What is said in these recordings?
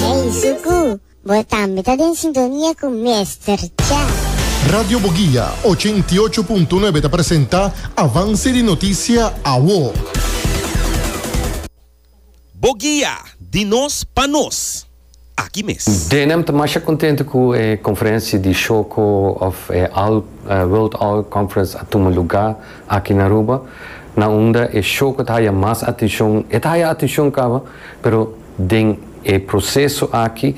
Ey Zuku, bo tambe ta den sintonia cu Mester Cha. Radio Boguia ochenta i ocho punto nuebe ta presenta avance di noticia awo. Boguia, di nos pa nos. Aki mes. Denham ta masha contento cu e conferencia di Shoko of All World All Conference a tuma luga aki na Aruba, na unda e Shoko ta haya mas atencion. E ta haya atencion caba. Pero den e proceso aki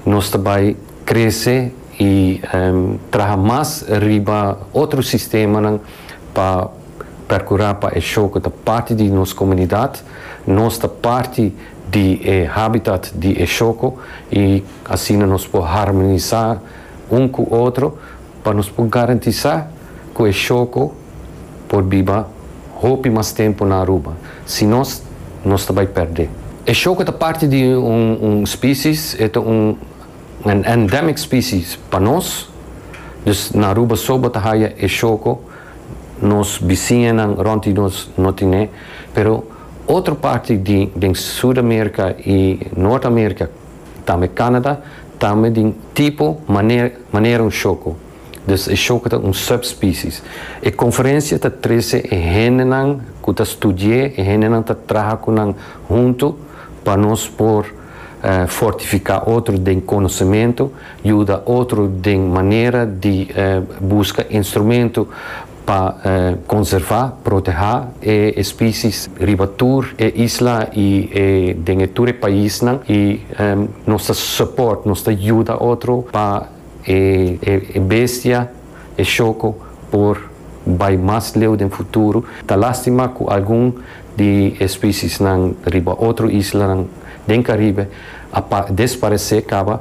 nos ta bay crece y traha mas riba otro sistemanan pa percura pa e show cu ta parti di nos comunidad, nos ta parti di e habitat di e shoco y asina nos por harmonisa un cu otro Pa nos por garantisá ku e shoko por biba hopi mas tempu na Aruba, si nos, nos ta bai pèrdé. E shoko ta parti di un spesies, e ta un endemic spesies pa nos, dus na Aruba so bo ta haya e shoko, nos bisiñanan rònt di nos no tin'é, pero otro parti di den Sud Amerika i Nort Amerika, Tambe Canada tambe di un tipo manera un shoko, dus e shoko ta un subspecies. E conferencia ta trece e hendenan cu ta studié, e hendenan ta traha cu nan hunto pa nos por fortifica otro den conocemento, yuda otro den manera di busca instrumento. Pa konservá, protehá e espisie's riba tur e isla i e den e tur e paisnan i nos ta support, nos ta yuda otro pa e e bestia, e shoko por bai mas leu den futuro. Ta lastima ku algun di e spiciesnan riba otro islanan den Caribe a desparesé kaba.